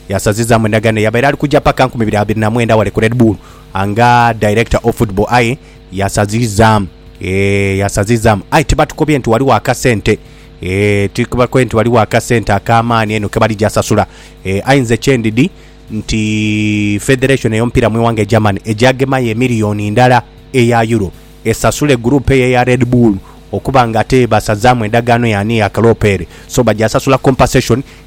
Yasazizaamu endagaano eyabaire ali kuja paka nkumi ibiri abiri na mwenda ghale ku Red Bull nga Director of Football aye yasazizaamu eeh yasazizaamu aye tibatukobye nti ghaligho akasente eeh tibatukobye nti ghaligho akasente ak'amaani einho ke balija sasula eeh aye nze kye ndidhi nti Federation ey'omupiira mu ighanga e Germany eja gemayo emiliyoni ndala eya Euro esasule group eyo eya Red Bull okuba nga ate basazaamu endagaano y'ani eya kaloopere so baja sasula compensation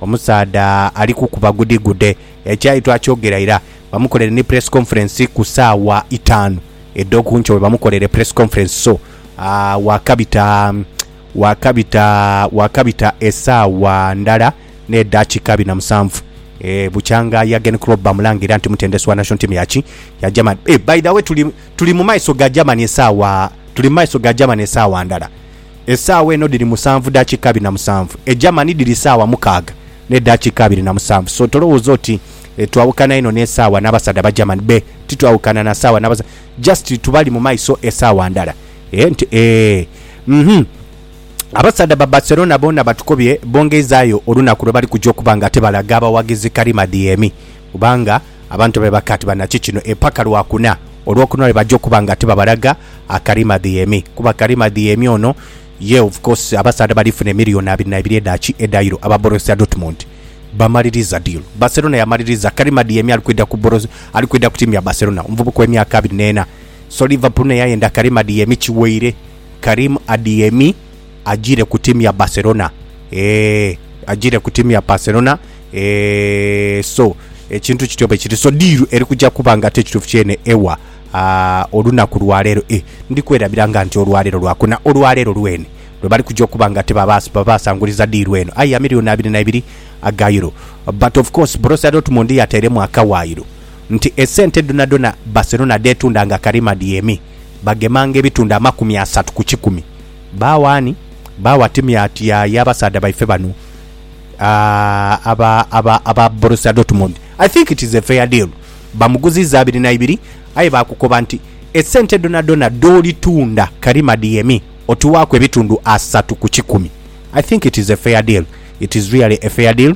Omusaadha ali kukuba gudegude. Ekyayi twakyogera ira. Bamukolere ni press conference ku saawa itaanu edho ku nkyo webamukolere press conference so wakabita wakabita wakabita esaawa ndala ne daakika abiri na musanvu eeh bukyanga Jurgen Klopp bamulanga ira nti mutendesi wa national team ya ki ya Germany eeh by the way tuli tuli mu maiso ga Germany esaawa tuli mu maiso ga Germany esaawa ndala. Esaawa eno dhiri musanvu dakika abiri na musanvu, e Germany dhiri saawa mukaaga ne dakika abiri na musanvu so tolowoza oti twawukana inho ne saawa nabasadha ba Germany be titwawukana na saawa nabasa just tubali mumaiso esaawa ndala eeh nti eeh uhmm Abasadha ba Barcelona boona batukobye bongeizayo olunaku lwebali kuja okuba nga ate balaga abawagizi kalimadhi emi Kubanga abantu be baka ati banaki kino eipaka lwa kuna, olwokuna lwe baja okuba nga tibabalaga Akarimadhiemi, kuba Akarimadhiemi ono ye of course abasaadha bali funa emiliyoni abiri na ibiri edha ki edha Euro aba Borussia Dortmund bamaliriza deal Barcelona yamaliriza Akarimadhiemi ali kwidha ku Boros ali kwidha ku tiimu ya Barcelona omuvubuka owe myaka abiri neena so Liverpool nayo eyayenda Akarimadhiemi kiweire Karim Adhiemi ajire ku timu ya Barcelona eeh ajire ku timu ya Barcelona eeh so ekintu kityo bwe kiri so diiru eri kuja kuba nga ate ekituufu kyene ewa ah, olunaku lwaleero eh, ndi kwerabira nga nti olwaleero lwakuna olwaleero lwene lwe bali kuja okuba nga ate babaas- babasanguliza diiru eno aye ya milioni abiri na ibiri aga euro but of course Borussia Dortmund yateiremu akawaayiro nti esente dhonadhona Barcelona dheetunda nga karima dhyemi bagemanga ebitundu amakumi asatu ku kikumi Baagho ani? Baagho atemye ati aye abasaadha baife bano aba Borussia Dortmund? I think it is a fair deal. Bamuguziiza abiri na ibiri aye baakukoba nti esente dhonadhona dh'oli tunda Karim Adeyemi otuwaaku ebitundu asatu ku kikumi. I think it is a fair deal. It is really a fair deal.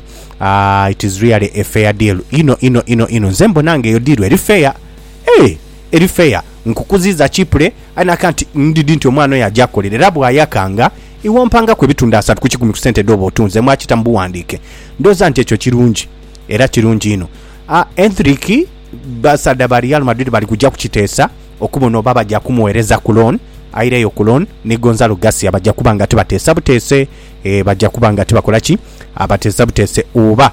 It is really a fair deal inho inho inho inho. Nze mbona nga eyo diiru eri fair. Eeh! Eri fair nkukuziiza cheaply aye naka nti ndidhi nti omwana oyo aja akolera era bwayakanga iwe ompangaku ebitundhu asatu ku kikumi ku sente dhooba otunze mwakita mu buwandiike ndhooza nti ekyo kirungi era kirungi inho a Endrick basaadha ba Real Madrid bali kuja kukiteesa okubona oba baja kumughereza ku loan aireyo ku loan ni Gonzalo Garcia baja kuba nga tibateesa buteese ee baja kuba nga tibakola ki abateesa buteese oba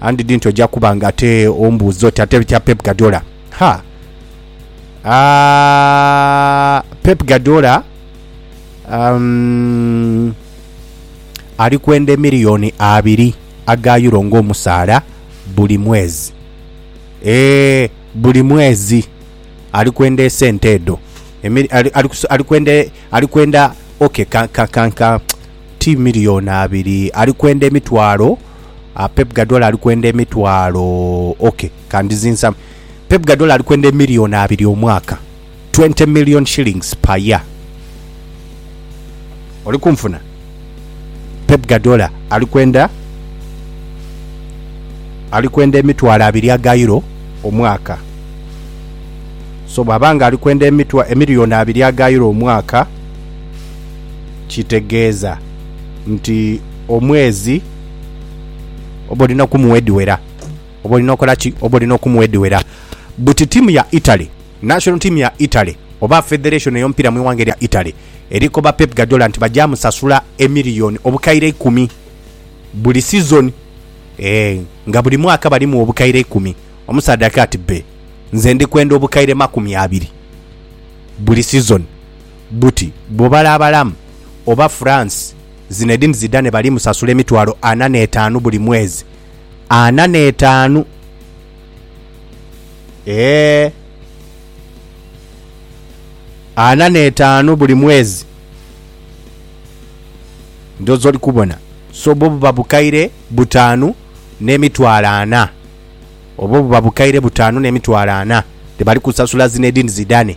I didn't oja kuba nga ate ombuuza oti ate ekya Pep Guardiola ha aah Pep Guardiola um, ali kwenda emiliyoni abiri aga euro ng'omusaala buli mwezi ee buli mwezi ali kwenda esente edho Emili- ali- ali kus- ali kwenda ali kwenda okay ka, ka, ka, ka, ti milioni abiri ali kwenda emitwalo ah, Pep Guardiola ali kwenda emitwalo ok kandizinsa Pep Guardiola ali kwenda emilioni abiri omwaka 20 million shillings per year oli kunfuna Pep Guardiola ali kwenda ali kwenda emitwalo abiri aga euro omwaka so bwaba nga ali kwenda emitwa emilioni abiri aga euro omwaka kitegeeza nti omwezi oba olina okumuwa edhiwera oba olina okola ki oba olina okumuwa edhiwera buti tiimu ya Italy national team ya Italy oba federation ey'omupiira mu ighanga erya Italy eri koba Pep Guardiola nti baja musasula emiliyoni obukaire eikumi buli sizoni eeh nga buli mwaka balimuwa obukaire eikumi omusaadha akaati bbe nze ndi kwenda obukaire makumi abiri buli sizoni. buti bwobala abalamu oba France Zinedine Zidane bali musasula emitwalo ana n'etaanu buli mwezi. Ana n'etaanu! Eeh! Ana n'etaanu buli mwezi! Ndhooza oli kubona. So bwo buba bukaire butaanu n'emitwalo ana. Obwo buba bukaire butaanu n'emitwalo ana, dhebali kusasula Zinedine Zidane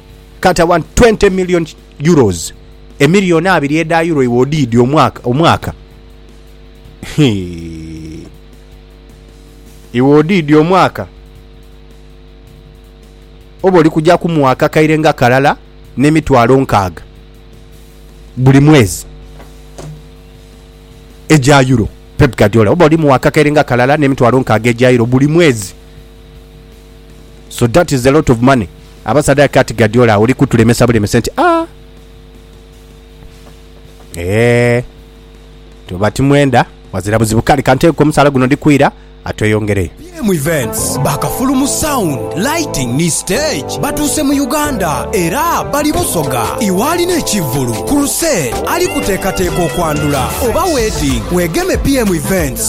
kati awa 20 million euros emiliyoni abiri edha euro iwe odiidi omwaka omwaka Hii. iwe odiidi omwaka oba oli kuja kumuwa akakaire nga kalala n'emitwalo nkaaga buli mwezi egya euro Pep Guardiola oba oli muwa akakaire nga kalala n'emitwalo nkaaga egya euro buli mwezi so that is a lot of money Abasadha kati Guardiola oli kutulemesa bulemese nti aah eeh tuba timwenda wazira buzibu kale kanteeke ku musaala guno ndikwira atweyongereyo. BM Events ba kafulu mu sound, lighting ni stage batuuse mu Uganda era bali Busoga. Iwe alina ekivvulu, crusade, ali kuteekateeka okwandhula oba wedding, weegeme BM Events.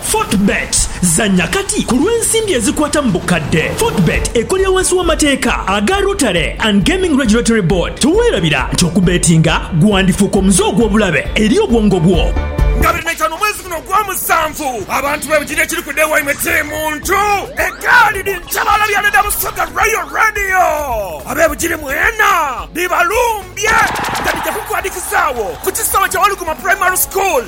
Fortebet, Zannya kati ku lw'ensimbi ezikwata mu bukadde. Fortebet ekolera wansi w'amateeka aga Rotary and Gaming Regulatory Board. Teweerabira nti okubeetinga gwandifuuka omuze ogw'obulabe eri obwongo bwo. Nga biri naitano omwezi guno ogwa musanvu, abantu bebujidde ekiri kuda ewaimwe kiri muntu egaali dhiri kyebaala bya Leader Busoga Royal Radio. Abebujiri mwena bibalumbye nga bidya kukwadikizaawo ku kisaawe kya Walukuma Primary School.